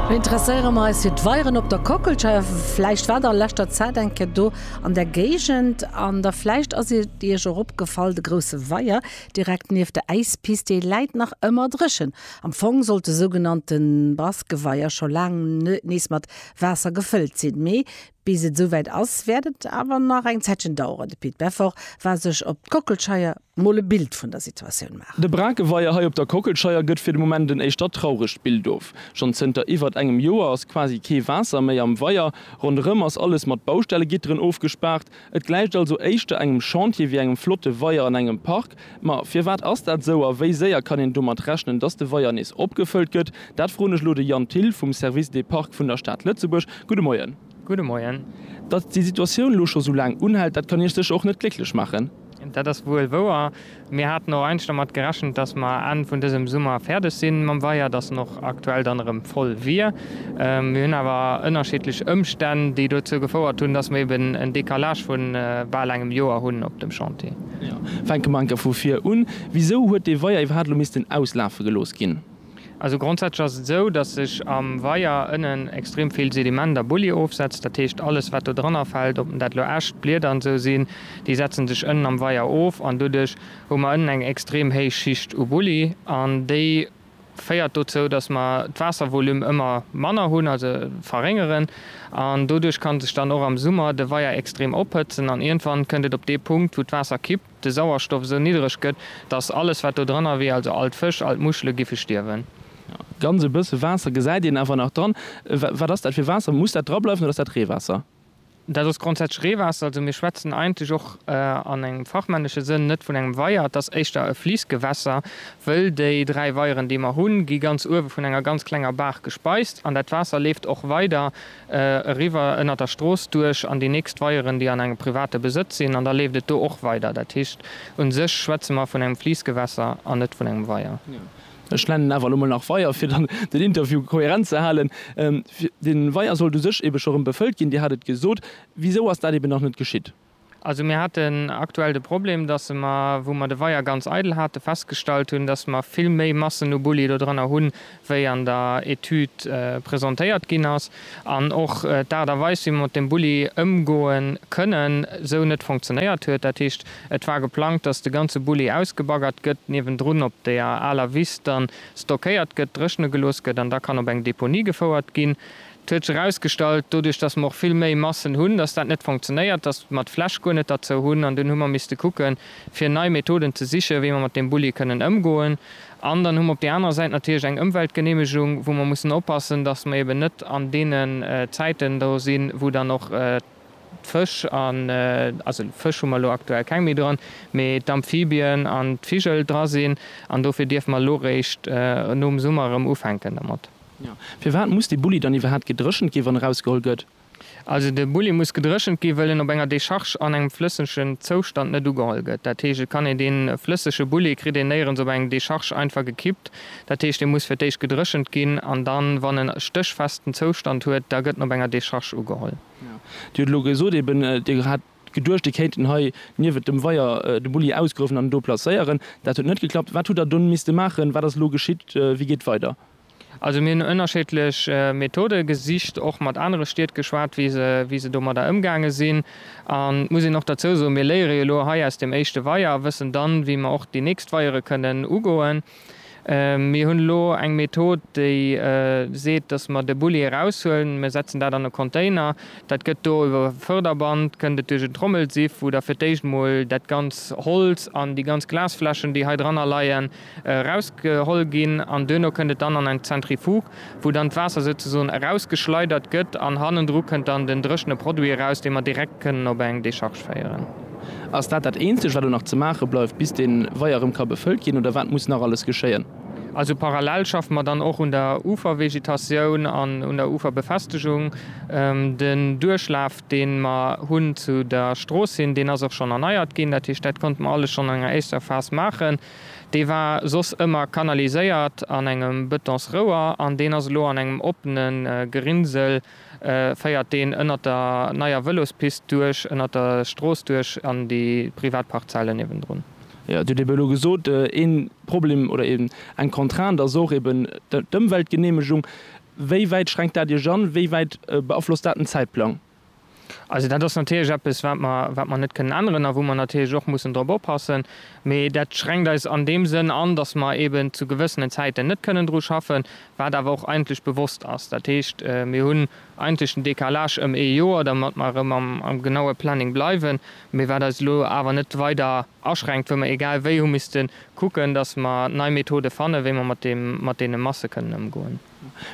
Interesséiere mer eis fir d'Weieren op der Kockelscheier. Vläicht waart der a leschter Zäit eng Kéier do an där Géigend an da vläicht ass et Iech och opgefall, de grousse Weier direkt nieft der Äispist, dee läit nach ëmmer dréchen. Am Fong sollt de sougenannte Baskenweier scho laang nees mat Waasser gefëllt sinn, mee Bis et esouwäit ass, wäert et awer nach eng Zäitchen daueren. De Pit Beffort war sech op d'Kockelscheier mol e Bild vun der Situatioun maachen. De Brakeweier hei op der Kockelscheier gëtt fir de Moment en éischter trauregt Bild of. Schonn zënter iwwert engem Joer ass quasi kee Waasser méi am Weier. Ronderëm ass alles mat Baustellegitteren ofgespaart. Et gläicht also éischter engem Chantier wéi engem flotte Weier an engem Park. Ma firwat ass dat esou a wéi séier kann een domat rechnen, dass de Weier nees opgefëllt gëtt? Dat froen ech elo de Yann Thill vum Service des Parcs vun der Stad Lëtzebuerg. Gudde Moien. Gudde Moien. Datt déi Situatioun elo scho sou laang unhält, dat kann Iech sécher och net glécklech maachen? Dat ass wuel wouer. Mir haten och eigentlech dermat gerechent, dass mer Enn vun dësem Summer fäerdeg si mam Weier, dass en och aktuell dann erëm voll wier. Mir hunn awer ënnerschiddlech Ëmstänn, déi dozou gefouert hunn, dass mer eben en Décalage vu bal engem Joer hunn op dem Chantier. Fänke mer enker vu vir un, Wisou huet dee Weier iwwerhaapt elo missten auslafe gelooss ginn? Also grondsätzlech ass et esou, dass sech am Weier ënnen extrem vill Sediment a Bulli ofsetzt. Dat heescht, alles, wat do dranner fält, ob dat elo Äscht, Blieder an esou sinn, déi setzen sech ënnen am Weier of. An doduerch hu mer ënnen eng extrem héich Schicht u Bulli an déi, féiert dozou, dass mer d'Waasservolume ëmmer manner hunn, also verréngeren, an doduerch kann sech dann och am Summer de Weier extrem ophëtzen an iergendwann kënnt et op dee Punkt, wou d'Waasser kippt, de Sauerstoff esou niddreg gëtt, dass alles, wat do dranner wier, also all d'Fësch, all d'Muschele giffe stierwen. Ganz e bësse Waasser gesäit een awer nach dran. Wat ass dat fir Waasser? Muss dat drableiwen oder ass dat Reewaasser? Dat ass grondsätzlech Reewaasser. Also mir schwätzen eigentlech och an engem fachmännesche Sënn net vun engem Weier, et ass éischter e Fliissgewässer, wëll déi dräi Weieren, déi mer hunn, gi ganz uewe vun enger ganz klenger Baach gespeist an dat Waasser leeft och weider eriwwer ënnert der Strooss duerch an déi nächst Weieren, déi an engem private Besëtz sinn an da leeft et do och weider. Dat heescht, u sech schwätze mer vun engem Fliissgewässer an net vun engem Weier. Ech nennen awer elo mol nach Weier, fir dann den Interview kohärent ze halen. De Weier sollt u sech eebe scho rëm befëllt ginn, Dir hat et gesot. Wisou ass dat eeben nach net geschitt? Also mir haten aktuell de Problem, dass mer, wou mer de Weier ganz eidel hate, festgestallt hunn, dass mer vill méi Massen u Bulli do drënner hunn, wéi an der Etüd presentéiert ginn ass. an och d'Aart a Weis wéi mer mat dem Bulli ëmgoe kënnen, esou net fonctionéiert huet. Dat heescht, et war geplangt, datt de ganze Bulli ausgebaggert gëtt, niewendrun op der aler Wiss dann stockéiert gëtt, dréchne gelooss gëtt an da kann op eng Deponie gefouert ginn. Et huet sech erausgestallt, doduerch datt mer och vill méi Massen hunn, datt dat net fonctionéiert, datt mer d'Fläch guer net derzou hunn an dunn hu mer misste kucke fir nei Methoden ze siche wéi mer mat deem Bulli kënnen ëmgoen. An dann hu mer op där anerer Säit natierlech eng Ëmweltgeneemegung, wou mer mussen oppassen, dass mer eben net an deene Zäiten do sinn, wou dann och d'Fësch, also Fësch hu mer elo aktuell keng méi dran, mee d'Amphibien an d'Vigel dra sinn. An dofir dierfe mer elo réischt nom Summer erëm ufänken domat. Firwat muss dee Bulli dann iwwerhaapt gedréchent ginn, wann erausgeholl gëtt? Also de Bulli muss gedréchent ginn, wëll en op enger Decharge an engem flëssegen Zoustand net ugeholl gëtt. Dat heescht, et kann een dee flëssege Bulli kritt een néierens op eng Decharge einfach gekippt. Dat heescht, dee muss fir d'éischt gedréchent ginn an dann, wann en e stéchfesten Zoustand huet, da gëtt en op enger Decharge ugeholl. Dir hutt elo gesot eben, Dir hat geduecht, Dir kéinten hei niewent dem Weier de Bulli ausgruewen an en do placéieren. Dat huet net geklappt. Wat hutt Der dunn misste maachen? Wat ass elo geschitt? Wéi geet weider? Also mir hunn ënnerscheedlech Methode gesicht, och mat anere Stied geschwat, wéi se domadder ëmgaange sinn. An et muss een och derzou soen, mir léiere jo elo hei aus deem éischte Weier a wëssen dann, wéi mer och déi nächst Weiere kënnen ugoen. Mir hunn elo eng Method, déi seet, dass mer de Bulli eraushuelen, mir setzen dat an e Container, dat gëtt do iwwer e Förderband, kënnt et duerch en Trommelsiff, wou da fir d'éischt emol dat ganz Holz an déi ganz Glasfläschen, déi hei dranner leien, erausgeholl ginn an duerno kënnt et dann an eng Zentrifuge, wou dann d'Waasser souzesoen erausgeschleidert gëtt an hannendru kënnt dann den dréchene Produit eraus, dee mer direkt kënnen op eng Decharge féieren. Ass dat dat eenzegt, wat elo nach ze maache bleift, bis dee Weier erëm ka befëllt ginn, oder wat muss nach alles geschéien? Also parallel schaffe mer dann och un der Ufervegetatioun an un der Uferbefestegung. Den Duerchlaf, dee mer hunn zu der Strooss hin, deen ass och schonn erneiert ginn. Dat heescht, dat konnte mer alles schonn an enger éischter Phas maachen. Dee war soss ëmmer kanaliséiert an engem Betonsrouer an deen ass elo an engem oppene Gerinnsel, féiert deen ënnert der neier Vëlospist duerch, ënnert der Strooss duerch an déi privat Parzellen niewendrun. Jo, et huet eben elo gesot, ee Problem oder eng Contrainte ass och eben d'Ëmweltgeneemegung. Wéi wäit schränkt dat Iech an? Wéi wäit beaflosst dat den Zäitplang? Also dat ass natierlech eppes, wat mer, wat mer net kënnen änneren a wou mer natierlech och mussen drop oppassen. Mee dat schränkt eis an deem Sënn an, datt mer eeben zu gewëssenen Zäiten net kënnen dru schaffen, wat awer och eigentlech bewosst ass. Dat heescht, mir hunn eigentlech den Décalage ëm ee Joer, damat mer erëm am, am genaue Planning bleiwen, mee wat eis elo awer net weider aschränkt, wou mer egal wéi hu misste kucken, datt mer nei Methode fannen, wéi mer mat deem, mat deene Masse kënnen ëmgoen.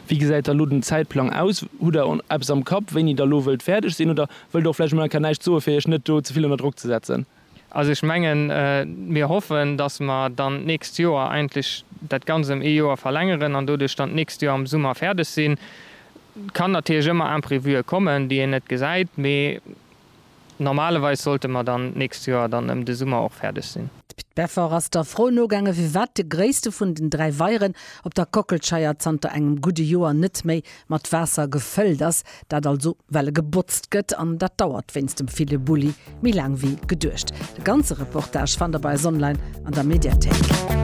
Wéi gesäit da lo den Zäitplang aus? Hutt Der eppes am Kapp, wéini Der lo wëllt fäerdeg sinn? Oder wëllt Der och vläicht emol enker näischt soen, fir Iech net do ze vill ënner Drock ze setzen? Also ech mengen, mir hoffen, dass mer dann d'nächst Joer eigentlech dat Ganzt ëm ee Joer verlängeren an doduerch dann d'nächst Joer am Summer fäerdeg sinn. Et kann natierlech ëmmer Imprévue kommen, déi een net gesäit, mee Normalerweis sollte mer dann d'nächst Joer dann ëm de Summer och fäerdeg sinn. D'Peffer ass der Fro nogaangen, firwat de gréisste vun den dräi Weieren op der Kockelscheier zanter engem gudde Joer net méi mat Waasser gefëllt ass. Dat also, well e gebotzt gëtt, an dat dauert wéinst dem ville Bulli méi laang wéi geduecht. De ganze Reportage fannt der bei eis online an der Mediathéik.